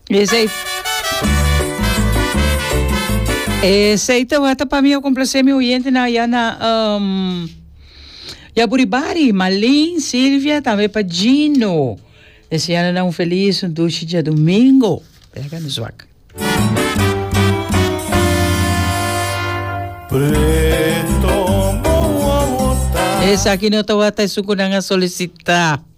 Esei. Esei te wata pa mi o complacé mi oyente na ya na um, ya buribari, Malin, Silvia, tambe pa Gino. Deseando na un feliz un dulce dia domingo. Pega no zwak. Preto, mo, mo, mo, ta. Esa aquí no te wata es un kunanga solicita.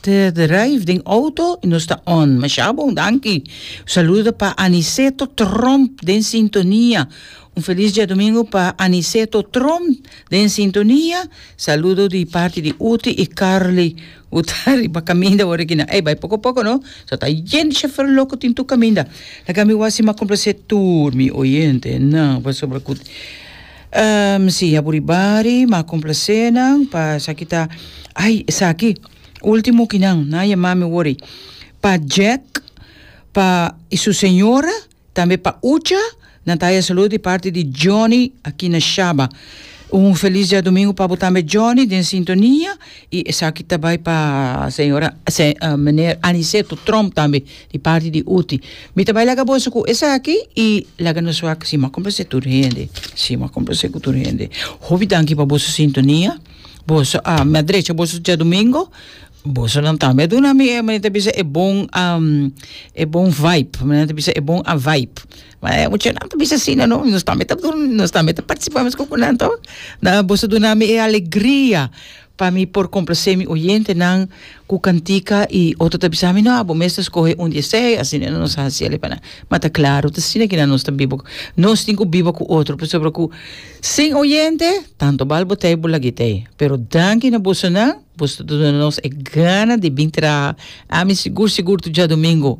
Te drive den auto y nos ta on. Masha bon, danki. Saludo pa Aniceto Tromp den sintonia. Un feliz diadomingo pa Aniceto Tromp den sintonia. Saludo di parti di Uti y Carly cu ta riba caminda awor aki na. Ey, bay poco poco no. So ta yen di chofer loco tin tur caminda. Laga mi wasi mas complace tur mi oyente nan pasobra cu. Msija buri bari ma complasé nan pa esaki ta ay esaki ultimo ki nan nan yama mi wori pa Jack pa y su señora tambe pa ucha nan ta haya salud di parti di Johnny aki na shaba un feliz diadomingo pa bo tambe Johnny den sintonia y esaki ta bay pa señora se meneer Aniceto Trump tambe Di parti di Uti. Mi ta bai laga boso ku esaki i laga nos wak. Si, m'a komplase tur hende. Si, m'a komplase ku tur hende. Hopi danki pa boso sintonia. Boso a mi a drecha boso djadumingu. Bosonan tambe a duna mi e men ta bisa e bon e bon vaip. Mi nan ta bisa e bon avaip. Ma e muchanan ta bisa asina no. Nos tambe ta nos tambe ta partisipa mesku ku nan to. Boso duna mi e alegria. Pa mi por complacé mi oyentenan cu cantica y otro ta bisa mi no abo mes ta scoge un di esey asina nos a haciele pa nan ma ta claro ta asina kina nos ta biba nos tin cu biba cu otro pasobra cu sin oyente tanto bal bo tey bo lag'e tey pero danki na bosonan boso ta duna nos e gana di bin traha ami sigur sigur tu djadomingo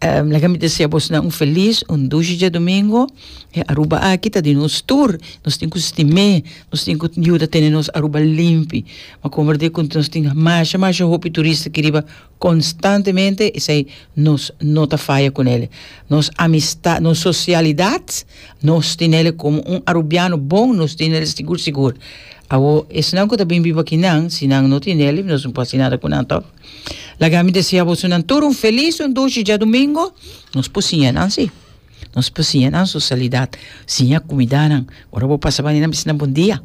Um, laga mi desea bosnan un felis, un dushi djadomingo. E Aruba aki ta di nos tur. Nos tin cu stim'é, nos tin cu yuda tene nos Aruba limpi. Ma comorde cu nos tin masha, masha hopi turista ki riba constantemente, esai nos no ta faya cu nele. Nos amistad, nos socialidad, nos tin nele como un Arubiano bon, nos tin nele sigur, sigur. Awo, esnan cu ta bin biba akinan, si nan no tin nele, nos no por haci nada cu nan, to. Laga mi desia bosonan tur un felis, un dushi djadumingo. Nos por siña nan si. Nos por siña nan socialidad. Siña cumidanan. Ora bo pasa bani nan bisnan bon dia,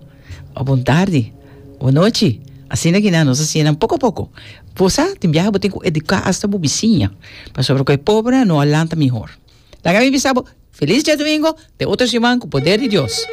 o bon tardi, o bon nochi. Asina ki nan nos a siña nan poco a poco. Bo sa, tin biaha bo tin cu educa hasta bo bisiña. Pasobra cu e pobre no a lanta mihor. Laga mi bisa bo, felis djadumingo, te otro siman cu poder di Dios.